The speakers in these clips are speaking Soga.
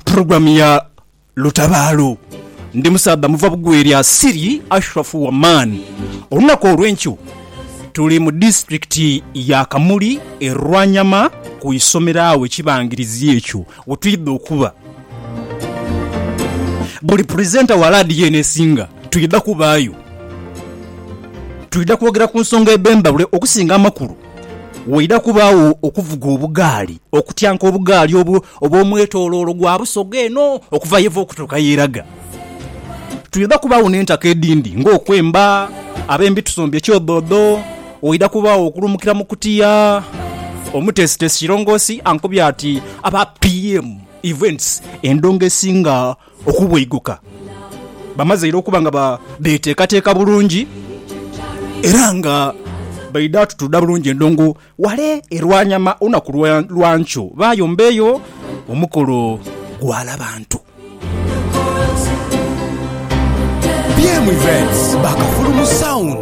Program ya Lutabaalo. Ndi musaadha muva bugwe lya Siri Ashraf Waman. Olunaku olwenkyo tuli mu disiturikiti ya Kamuli e Rwanyama ku isomero agho ekibangirizi ekyo wetwidha okuba. Buli puresenta wa laadiyo eno esinga twidha kubaayo. Twidha kwogera ku nsonga edh'endhawulo okusinga amakulu. Waidha kubaagho okuvuga obugaali okutyanka obugaali obwo obw'omwetoloolo gwa busoga eno okuva y'eva okutuuka y'eraga. Twidha kubaagho n'entaka edhindi ng'okwemba, abembi tusombye kyodhoodho, waidha kubaagho okulumukira mu kutiya. Omuteesiteesi Kirongoosi ankobye ati, Aba PM Events endongo esinga okubweiguka bamazeire okuba nga beteekateeka bulungi era nga baidha tutuudha bulungi endongo wale e Rwanyama olunaku lwa nkyo bayombeeyo omukolo gwa Labantu. BM Events, ba Kafulu mu sound.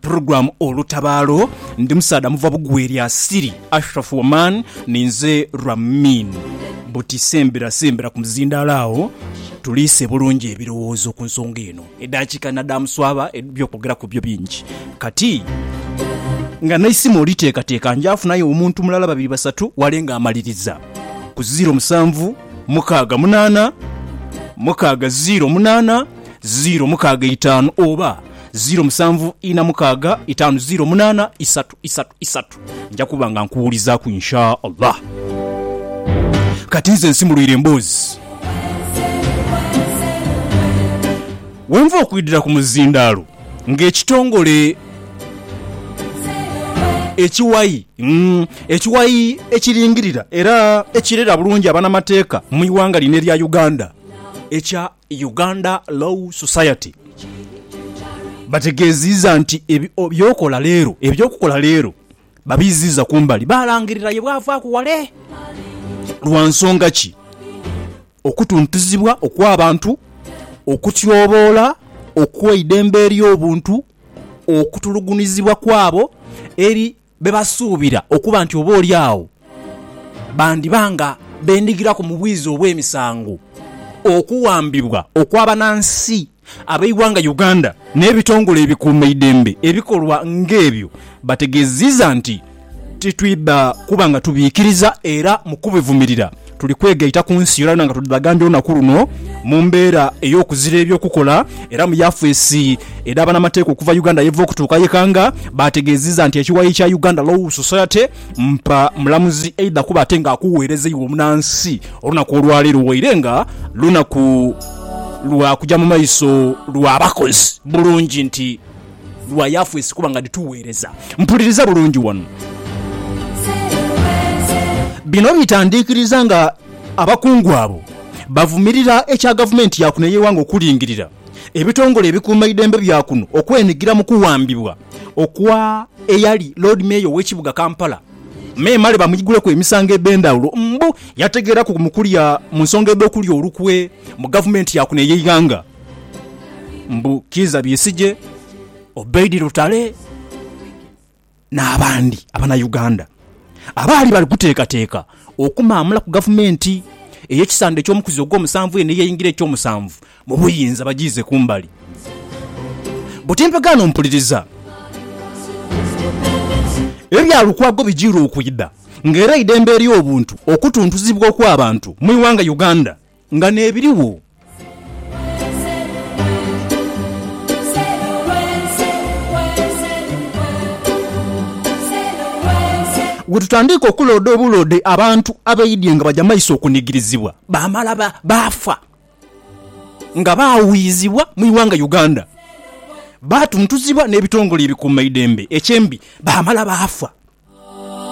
Program Olutabaalo ndi musaadha muva bugwe lya Siri Ashraf Waman ninze Ramin buti sembera sembera ku muzindaalo agho tuliise bulungi ebirowoozo ku nsonga eno. Edaakiika nadaamuswaba eby'okwogeraku byo bingi kati nga n'eisimu oliteekateeka nja funayo omuntu mulala babiri basatu wale ng'amaliriza ku ziiro musanvu mukaaga munaana mukaaga ziiro munaana ziiro mukaaga eitaanu oba Ziro musanvu ina mukaaga itaanu ziro munaana isatu isatu isatu. Nja kuba nga nkuwulizaaku Insha Allah. Kati nze nsimulwire emboozi. Wenva okwidira ku muzindaalo nga ekitongole ekiwayi ekiwayi ekiringirira era ekirera bulungi abanamateeka mu iwanga lino erya Uganda ekya Uganda Law Society bategeziiza nti eby'okola leero eby'okukola leero babiiziiza kumbali baalangirira ye bwavaaku wale lwa nsonga ki okutuntuzibwa okw'abantu, okutyoboola okw'eidembe ery'obuntu, okutulugunizibwa kwabo eri be basuubira okuba nti oboolyawo bandiba nga bendhigiraku mu bwiza obw'emisango, okuwambibwa okw'abanansi ab'eighanga Uganda n'ebitongole ebikuumaidembe ebikolwa ng'ebyo bategeziiza nti titwidha kuba nga tubiikiriza era mu kubivumirira Tuli kwegaita ku nsi yonayona nga tudhagambye olunaku luno mu mbeera ey'okuzira eby'okukola era mu yafeesi edha banamateeka okuva Uganda yeva okutuuka ye Kanga baategeezizza nti ekiwayi kya Uganda Law Society mpa mulamuzi aidha kuba ate nga akuweereza iwe omunansi olunaku olwaleero waire nga lunaku lwa kuja mu maiso lwa bakozi bulungi nti lwa Yafesi kuba nga dhituweereza. Mpuliriza bulungi wano. Bino bitandikiriza nga abakungu abo bavumirira ekya gavumenti ya kuno ey'eighanga okulingirira ebitongole ebikuuma eidembe bya kuno okwenigira mu kuwambibwa okwa eyali Loodi Meeya ow'ekibuga Kampala, memale bamuiguleku emisango edh'endhawulo mbu yategeeraku mu kulya mu nsonga edh'okulya olukwe mu gavumenti ya kuno ey'eighanga. mbu Kiiza Besigye, Obeid Lutale n'abandi Abanauganda abaali bali kuteekateeka okumaamulaku gavumenti ey'ekisanda eky'omukuzi ogw'omusanvu eno ey'eingira eky'omusanvu mu buyinza bagiize kumbali. Buti empegaano mpuliriza ebya Lukwago bijiirwa okwidha nga era eidembe ery'obuntu okutuntuzibwa okw'abantu mu ighanga Uganda, Nga n'ebirigho. Bwe tutandiika okulooda obuloode abantu abaidhie nga baja maiso okunigirizibwa, baamala baafa nga baawuuyizibwa mu ighanga Uganda, baatuntuzibwa n'ebitongole ebikuumaidembe eky'embi baamala baafa.